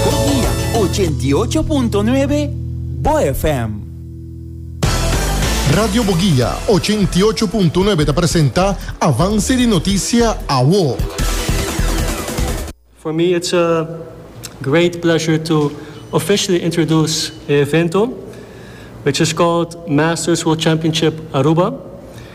Godia ochenta i ocho punto nuebe, bo FM. Radio Bogia ochenta i ocho punto nuebe ta presenta Avance di Noticia Awo. For me it's a great pleasure to officially introduce e evento which is called Masters World Championship Aruba.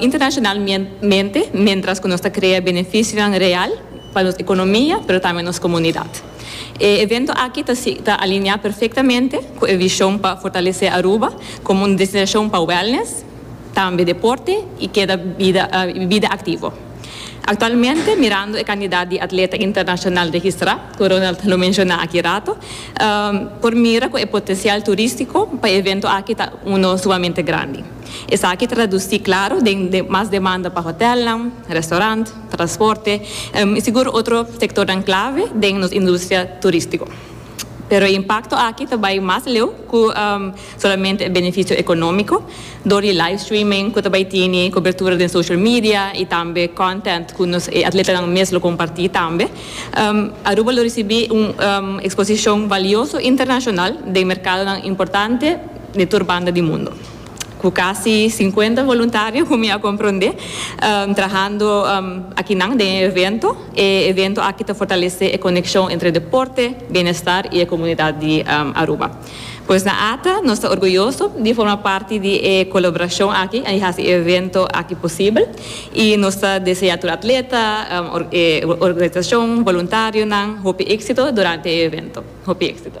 internacionalmente mientras cu nos ta crea beneficionan real pa nos economia pero tambe nos comunidad. E evento aki ta ta alinea perfectamente cu e vision pa fortalece Aruba como un destinacion pa wellness, tambe deporte y keda bida bida activo. Actualmente mirando e cantidad di atleta internacional registra cu Ronald lo menciona aki rato por mira cu e potencial turistico pa e evento aki ta uno sumamente grandi. Esaki traducí claro den mas demanda pa hotelnan, restaurant, transporte y sigur otro sectornan clave den nos industria turistico. Pero e impacto aki ta bay mas leu cu solamente e beneficio economico door di live streaming cu ta bay tini cobertura den social media y tambe content cu nos e atletanan mes lo comparti tambe. Aruba lo ricibi un exposicion valioso internacional den mercadonan importante di tur banda di mundo. Cu casi cincuenta voluntario, cu mi a comprende, trahando akinan den e evento. E evento aki ta fortalece e conexion entre deporte, bienestar y e comunidad di Aruba. Pues na Ata, nos ta orguyoso di forma parti di e colaboracion aki di haci e evento aki posibel y nos ta desea tur atleta, e organisacion, voluntarionan hopi exito durante e evento. Hopi exito.